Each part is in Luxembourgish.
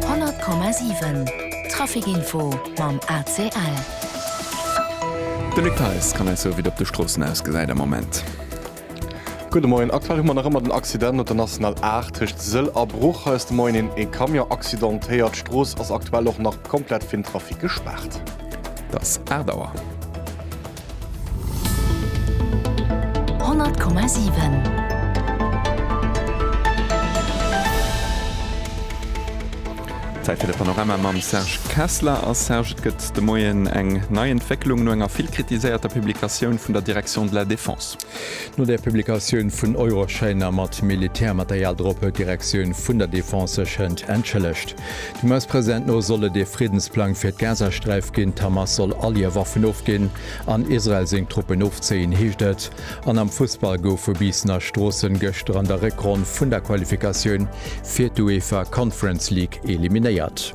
100,7 Trafic Info mam ACL. De Luc Theis kann eis soe wéi et op de Stroossen ausgesäit am Moment. Gudde Moien, aktuell hu mer nach ëmmer den Accident op der National 8 tëscht Sëll a Bruch. Hei ass de Moien een ee Camion accidentéiert. D'Strooss ass aktuell och nach komplett fir den Trafic gespaart. Dass 8 Auer. Zäit fir de Panorama mam Serge Kessler. A Serge, et gëtt de Moien eng nei Entwécklung no enger vill kritiséierter Publikatioun vun der Direction de la Défense. No der Publikatioun vun Euroschäiner mat Militärmaterial drop huet d'Direktioun vun der Defense sech hënt entschëllegt. D'Hamas-President no soll et ee Friddensplang fir d'Gazasträif ginn. D'Hamas soll all hir Waffen ofginn an Israel seng Truppen ofzéien, heescht et. An am Fussball goufe Biissener Stroossen gëschter an der Réckronn vun der Qualifikatioun fir d'UEFA Conference League eliminéiert.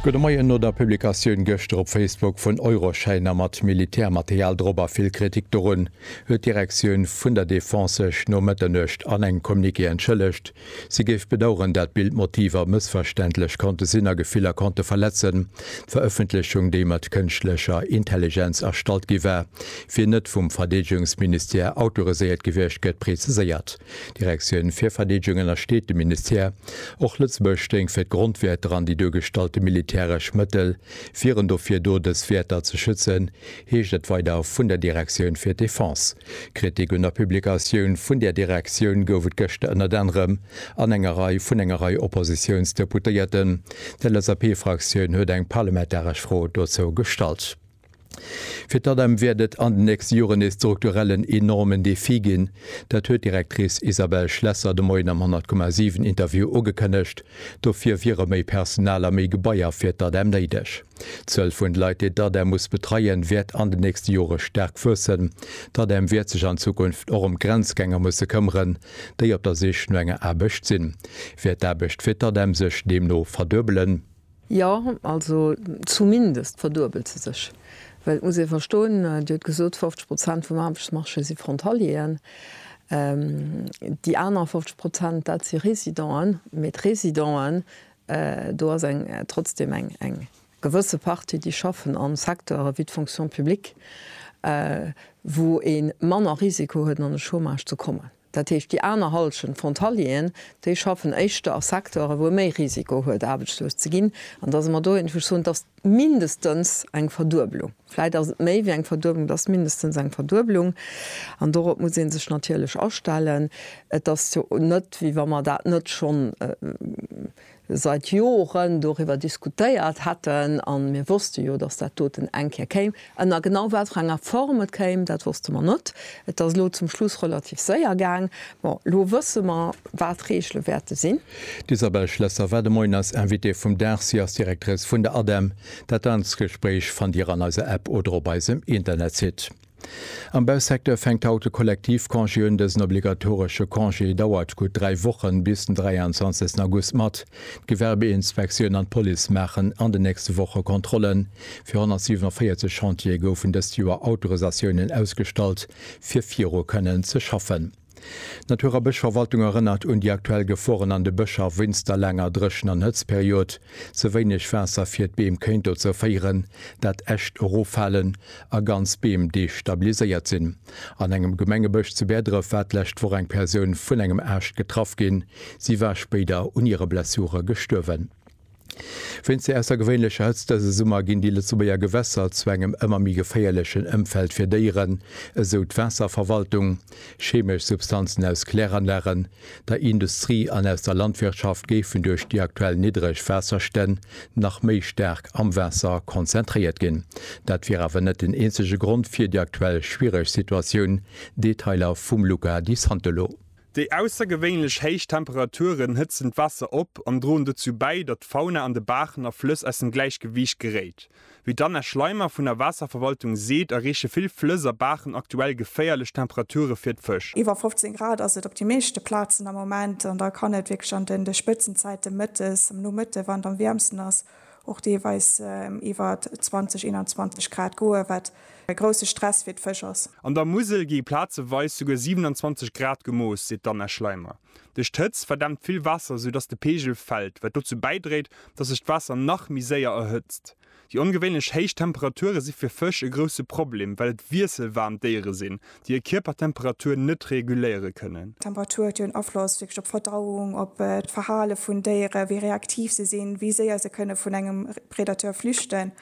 Gudde Moien. No der Publikatioun gëschter op Facebook vun Euroschäiner mat Militärmaterial drop a vill Kritik dorun, huet d'Direktioun vun der Defense sech no Mëtternuecht an engem Communiqué entschëllegt. Si géif bedaueren, dat Bildmotiver mëssverständlech konnte sinn a Gefiller konnte verletzen. D'Verëffentlechung, déi mat kënschtlecher Intelligenz erstallt gi war, wier net vum Verdeedegungsministère autoriséiert gewiescht, gëtt preziséiert. D'Direktioun fir Verdeedegung ënnersteet dem Ministère. Och Lëtzebuerg stéing fir d'Grondwäerter an déi duergestallte militäresch Mëttel wieren dofir do, dës Wäerter ze schützen, heescht et weider vun der Direktioun fir d'Defense. Kritik un der Publikatioun vun där Direktioun gouf et gëschter ënnert anerem an enger Rei vun enger Rei Oppositiounsdeputéierten. D'LSAP-Fraktioun huet eng parlamentaresch Fro dozou gestallt. Fir d'ADEM wäert et an den nächste Joren ee strukturellen enormen Defi ginn. Dat huet d'Directrice Isabelle Schlesser de Moien am 100,7 Interview ugekënnegt. Dofir wiere méi Personal a méi Gebaier fir d'ADEM néideg. D'Zuel vun de Leit, déi d'ADEM muss betreien, wäert an de nächste Jore staark wuessen. D'ADEM wäert sech an Zukunft och ëm d'Grenzgänger musse këmmeren, déi op der Sich no enger Aarbecht sinn. Wäert d'Aarbecht fir d'ADEM sech deemno verduebelen? Jo, also zumindest verduebelt se sech. Well et muss ee verstoen, Dir hutt gesot, 50 Prozent vum Aarbechtsmarché si Frontalieren. Déi aner 50 Prozent, dat si Residenten. Mee d'Residente Do ass eng, trotzdem eng, eng gewësse Partie, déi schaffen a Secteure wéi d'Fonction publique, wou ee manner Risiko huet, an de Chômage ze kommen. Dat heescht, déi aner Hallschent Frontalieren, déi schaffen éischter a Secteure, wou ee méi Risiko huet, aarbechtslos ze ginn. An da si mer do, wou ech soen, dass mindestens eng Verdueblung, vläit ass et méi wéi eng Verdueblung, et ass mindestens eng Verdueblung an dorop muss ee sech natierlech astellen. Et ass jo net, wéi wa mer dat net schonn seit Joren doriwwer diskutéiert hätten a mir wosste jo, datt dat doten eng Kéier kéim. Ënner genau wat fir enger Form et kéim, dat wosste mer net. Et ass elo zum Schluss relativ séier gaang. Bon, elo wësse mer, wat d'Reegele wäerte sinn. D'Isabelle Schlesser war de Moien eis Invitée vum Dag. Si ass Directrice vun der ADEM. Dat ganzt Gespréich fannt Dir an eiser App oder op eisem Internetsite. Am Bausecteur fänkt haut de Kollektivcongé un. Dësen obligatoresche Congé dauert gutt dräi Wochen bis den 23 August mat. D'Gewerbeinspektioun an d'Police maachen an den nächste Woche Kontrollen. Fir 147 Chantiere goufen dëst Joer Autorisatiounen ausgestallt, fir viru kënnen ze schaffen. D'Natur a Bëschverwaltung erënnert un déi aktuell Geforen an de Bëscher wéinst der laanger Dréchen an Hëtzperiod. Ze wéineg Waasser fir d'Beem kéint dozou féieren, dat Äscht eroffalen a ganz Beem destabiliséiert sinn. An engem Gemengebësch zu Bäerdref war d'lescht Woch eng Persoun vun engem Aascht getraff ginn. Si war spéider un hire Blessure gestuerwen. Wéinst der aussergewéinlecher Hëtzt dëse Summer ginn déi Lëtzebuerger Gewässer zu engem ëmmer méi geféierlechen Ëmfeld fir Déieren, esou d'Waasserverwaltung. Chemesch Substanzen aus Kläranlagen der Industrie an aus der Landwirtschaft géifen duerch déi aktuell niddreg Waasserstänn nach méi staark am Waasser konzentréiert ginn. Dat wier awer net den eenzege Grond fir déi aktuell schwiereg Situatioun. Detailer vum Luca Di Santolo. Déi aussergewéinlech héich Temperaturen hëtzen d'Waasser op an droen dozou bäi, datt d'Fauna an de Baachen a Flëss aus dem Gläichgewiicht geréit. Wéi d'Anna Schleimer vun der Waasserverwaltung seet, erreeche vill Flëss a Baachen aktuell geféierlech Temperature fir d'Fësch. Iwwer 15 Grad ass et op de meeschte Plazen am Moment an da kann et wierklech an de Spëtzenzäite mëttes, am Nomëtte wann et am wäermsten ass, och deelweis iwwer 20, 21 Grad goen, wat e grousse Stress fir d'Fësch ass. An der Musel gi plazeweis souguer 27 Grad gemooss, seet d'Anna Schleimer. Duerch d'Hëtz verdämpt vill Waasser, sou dass de Peegel fält, wat dozou bäidréit, dass sech d'Waasser nach méi séier erhëtzt. Déi ongewéinlech héich Temperature si fir Fësch e grousse Problem, well et wiesselwaarm Déiere sinn, déi hir Kierpertemperatur net reguléiere kënnen. D'Temperatur huet jo en Afloss wierklech op d'Verdauung, op d'Verhale vun Déiere, wéi reaktiv se sinn, wéi séier se kënne vun engem Predateur flüchten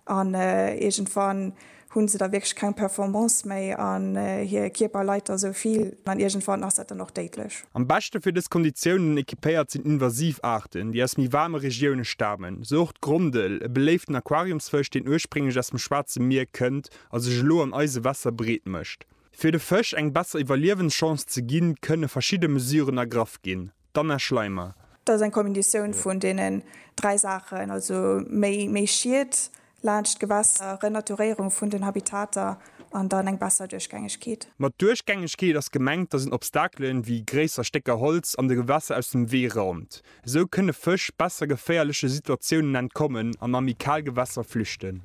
an iergendwann Hunn se da wierklech keng Performance méi an hir Kierper leit da sou vill? An iergendwann ass dat dann och déidlech. Am beschte fir dës Konditiounen ekipéiert sinn invasiv Aarten, déi aus méi waarme Regioune stamen, sou och d'Grondel, e beléiften Aquariumsfësch, deen ursprénglech aus dem Schwaarze Mier kënnt a sech elo an eise Wässer breet mécht. Fir de Fësch eng besser Iwwerliewenschance ze ginn, kënne verschidde Mesuren ergraff ginn. D'Anna Schleimer. Dat ass eng Kombinatioun vun deenen dräi Saachen, also méi Schied laanscht d'Gewässer, Renaturéierung vun den Habitater an dann eng besser Duerchgängegkeet. Mat Duerchgängegkeet ass gemengt, dass een Obstakelen, wéi gréisser Stécker Holz, an de Gewässer aus dem Wee raumt. Esou kënne Fësch besser geféierleche Situatiounen entkommen an a méi kal Gewässer flüchten.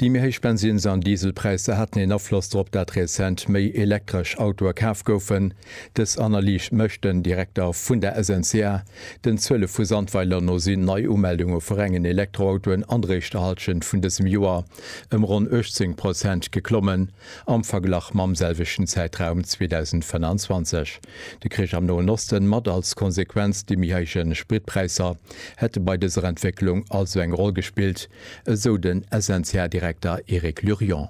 Déi méi héich Bensins an Dieselpräisser haten een Afloss drop, dat rezent méi elektresch Autoe kaf goufen. Dës Analyse mécht den Direkter vun der SNCA. Den Zuele vu Sandweiler no sinn d'Neiumeldunge vu rengen Elektroautoen an der éischter Hallschent vun dësem Joer ëm ronn 18 Prozent geklommen am Verglach mam selwechten Zäitraum 2025. De Krich am Noen Osten mat als Konsequenz déi méi héije Spritpräisser hätte bei dëser Entwécklung also eng Roll gespillt, esou den SNCA-Direkter Eric Lurion.